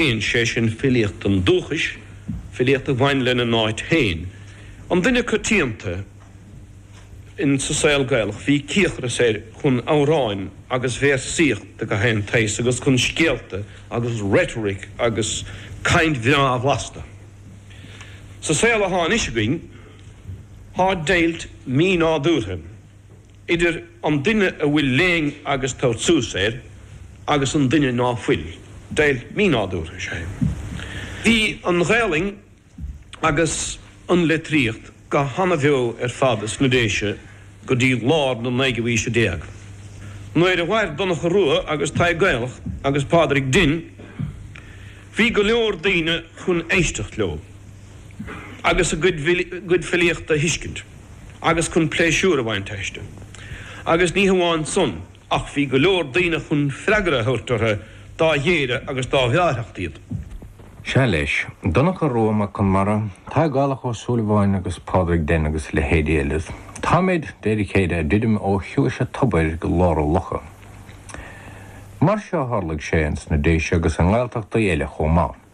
Bíonn sé sin filíocht an dúchais, filíocht a bhain lena n-áit féin. An duine coitianta in sa saol Gaelach, bhí cíocras air chun amhráin agus véarsaíocht de gach aon tsaghas agus chun scéalta agus rhetoric agus caint bhreá bhlasta. Sa saol athá anois againn, thá deighilt mí-nádúrtha. idir an duine a bhfuil léann agus tabhairt suas air agus an duine ná fuil. Deighilt mínádúrtha is ea é. Bhí an Ghaelainn agus an leitríocht go hana-bheo ar fad ins na Déise go dtí lár na naoú aoise déag. Nuair a mhair Donncha Rua agus Tadhg Gaelach agus Pádraig Denn bhí go leor daoine chun éisteacht leo agus a gcuid filíochta a thuiscint. agus chun pléisiúr a bhaint aisti. Agus ní hamháin san, ach bhí go leor daoine chun freagra a thabhairt orthu dá ghéire agus dá bhreáthacht iad. Sea, leis. Donncha Rua Mac Conmara, Tadhg Gaelach Ó Súilleabháin agus Pádraig Denn agus leithéidí eile. Táimid, de réir a chéile, ag druidim ó chiumhais a' tobair go lár a' locha. Mar seo a tharlaigh sé ins na Déise agus i nGaeltachtaí eile chomh maith.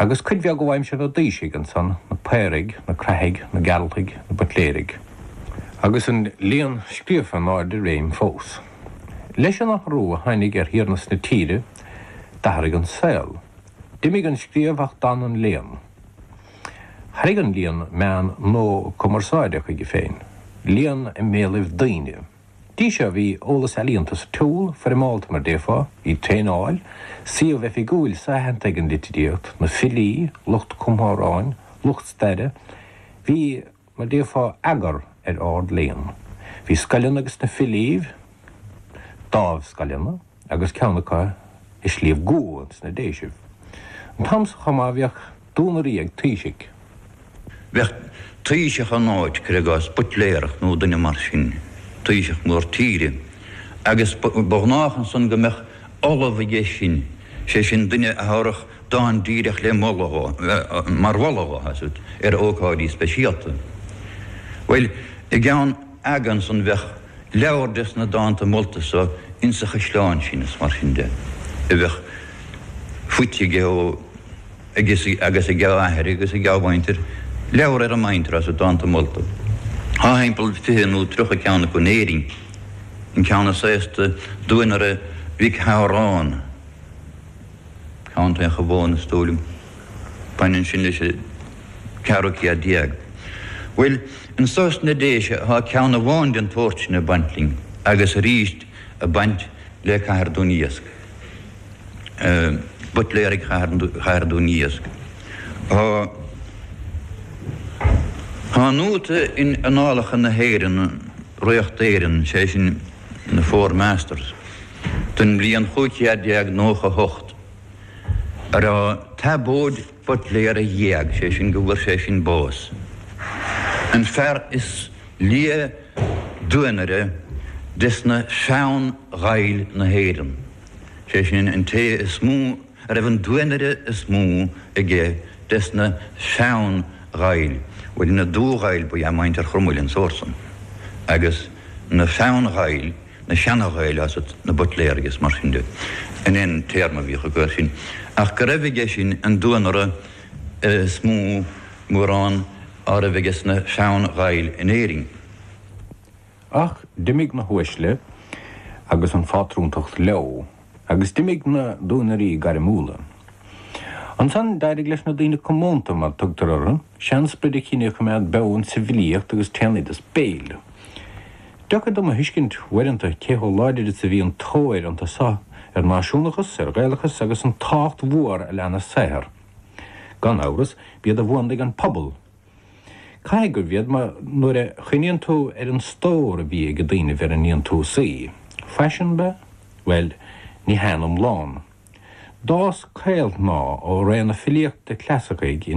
Agus cuid bheag ó aimsir na dtaoisigh ansan, na Paoraigh, na Craithigh, na Gearaltaigh, na Buitléirigh. Agus an léann scríofa in ardréim fós. Leis an athrú a tháinig ar thiarnas na tíre, d'athraigh an saol. D'imigh an scríobh ach d'fhan an léann. Tharraing an léann meán nua cumarsáide chuige féin, léann i mbéalaibh daoine. Dtí seo bhí eolas ealaíonta sa tsiúl, foirmeálta mar déarfá, bhí traenáil, suíomh oifigiúil so-aitheanta ag an litríocht, na filí, lucht cumtha amhráin, lucht staire. Bhí, mar déarfá, eagar ar ard-léann. Bhí scoileanna ages na filíbh, dámh-scoileanna. agus ceann acu i Sliabh gCua ins na Déisibh. An t-am so chomh maith bhíodh duanairí ag Taoisigh. Bheadh Taoiseach in áit, cuir i gcás, Buitléarach nó duine mar sin, Taoiseach mór tíre, agus ba ghnách ansan go mbeadh ollamh aige sin, sé sin duine a thabharfadh dán díreach le moladh dhó, mar mholadh dhó, ar ócáidí speisialta. Bhuel, i gceann. aga ansan bheadh leabhar des na dánta molta so ins a' chaisleán sin is mar sin de a bheadh faighte aige ó agus agus ag a athair agus ag a mhuintir, leabhar ar a muintir as a dánta molta. Thá thimpeall fiche nó tríocha ceann acu in Éirinn, an ceann is aosta Duanaire Mhic Shamhráin, Co. an Chabháin is dóigh liom. Baineann sin leis an ceathrú céad déag. Bhuel, anso sna Déise tá ceann amháin den tsórt sin ag baint linn, agus arís ag baint le Cathair Dún Iasc. Buitléaraigh Chathair Dún Iasc. Tá an nóta in Annálacha na hÉireann, Ríocht Éireann, sé sin, na Four Masters, don mbliain 1598, a raibh Tiobóid Buitléar a dh'éag, sé sin go bhfuair sé sin bás, an fear is lia duanaire desna Sean-Ghaill na hÉireann, sé sin an té is mó a raibh an duanaire is mó aige desna Sean-Ghaill, bhuel na Dubh-Ghaill ba ea muintir Chromail an sórt san, agus na Sean-Ghaill. na Seana-Ghaill is iad na Buitléaraigh is mar sin de, an aon téarma a bhíodh acu air sin, ach go raibh aige sin an duanaire is mó, mórán, á raibh aige sna Sean-Ghaill in Éirinn. Ach d'imigh na huaisle agus an phátrúntacht leo. agus d'imigh na duanairí gairmiúla. Ansan, d'éirigh leis na daoine comónta, mar a tugtar orthu, sean-sprid an chine a choimeád beo insa bhfilíocht agus san oideas béil. Deocair dom a thuiscint, uaireanta, cé chomh láidir is a bhí an tóir iontu so ar náisiúnachas, ar Ghaelachas agus an tábhacht mhór a lean a saothar. Gan amhras, b'iad a bhuanaigh an pobal, Caithfidh gurbh iad mar nuair a chuimhníonn tú ar an stór a bhí ag daoine mar a níonn tú suí. Faisean ba? Bhuel, ní haon iomlán. D'fhás caolshnáth ó ré na filíochta clasaicigh i